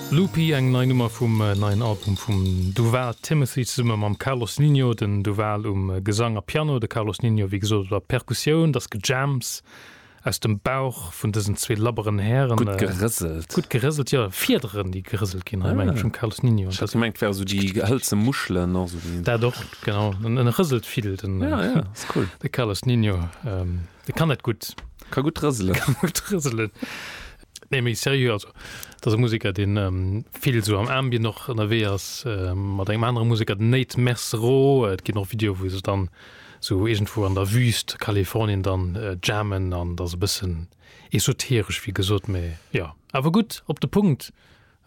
Loopy, eng nei Nummer vum neien Album vum Duval Timothy zesumme mam Carlos Ninho, den Duval um Gesang a Piano, de Carlos Ninho wéi gesot op der Perkussioun. Dass gejams aus dem Bauch vun dësen zwee labberen Hären. Gutt gerëselt. Gutt gerëselt, jo. Fiederen déi gerëselt ginn hei meng ech um Carlos Ninho. Ech hat gemengt et ware sou déi hëlze Muschelen och esou. Dat och, genau. En rëselt vill den Carlos Ninho. De kann dat gutt. Ka gutt rëselen. Ka gutt rëselen. Nee méi serieux, also et ass e Museker deen vill esou am Ambient och ënnerwee ass mat engem anere Museker den Nate Mesro. Et ginn och Videoe wou se dann esou iergendwou an der Wüüst Kalifornien dann jammen an et ass e bëssen esoteresch wéi gesot, mee jo. Awer gutt op de Punkt.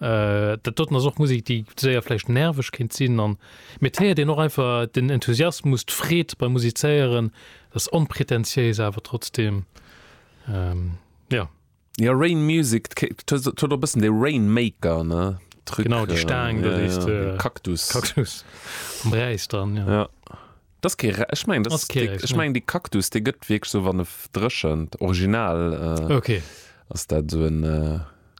Dat doten ass och Musek déi séier vläicht nerveg kéint sinn an, mee et héiert een och einfach den Enthusiasmus, d'Freed beim Musizéieren, dat ass onpretentiéis awer trotzdeem jo. Ja Rain Music, d'huet och e bëssen de Rainmaker, ne, Truc. Genau, déi Staang do, déi s de. Ja, Cactus. Cactus. Am Bräis dran, jo. Ja. Dat ass kee Räis, ech mengen, dat ass kee Räis, ne. Ech mengen, dee Cactus, dee gëtt wierklech esou, wann e dréchent, original, Ok. ass dat esou en,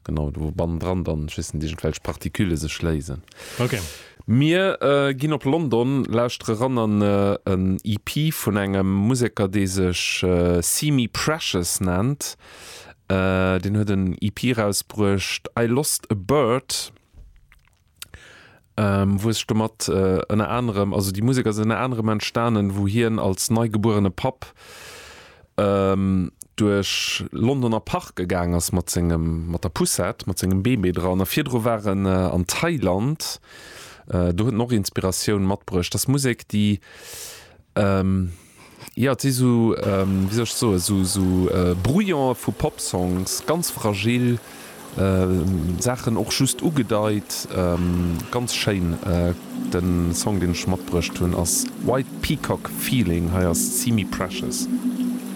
genau, do wou bannendran dann, ech weess net, iergendwelch Partikülle sech léisen. Ok. Mir ginn op London, lauschtere ran an en EP vun engem Museker dee sech See Me Precious nennt. Deen huet en EP erausbruecht I Lost A Bird wou e sech domat ënner anerem, also déi Musek ass ënner anerem entstanen wou hien als neigebuerene Papp duerch Londoner Parke gaang ass mat sengem, mat der Poussette, mat sengem Bébé dran. A virdru war en an Thailand, do huet en och Inspiratioun matbruecht. Ass Musek, déi, jo, et si sou, wéi soll ech soen, sou, sou Brouillone vu Pop-Songs, ganz fragil. Saachen och just ugedeit. Ganz schéin. Den Song deen ech matbruecht hunn ass White Peacock Feeling. Hei ass Simi Precious.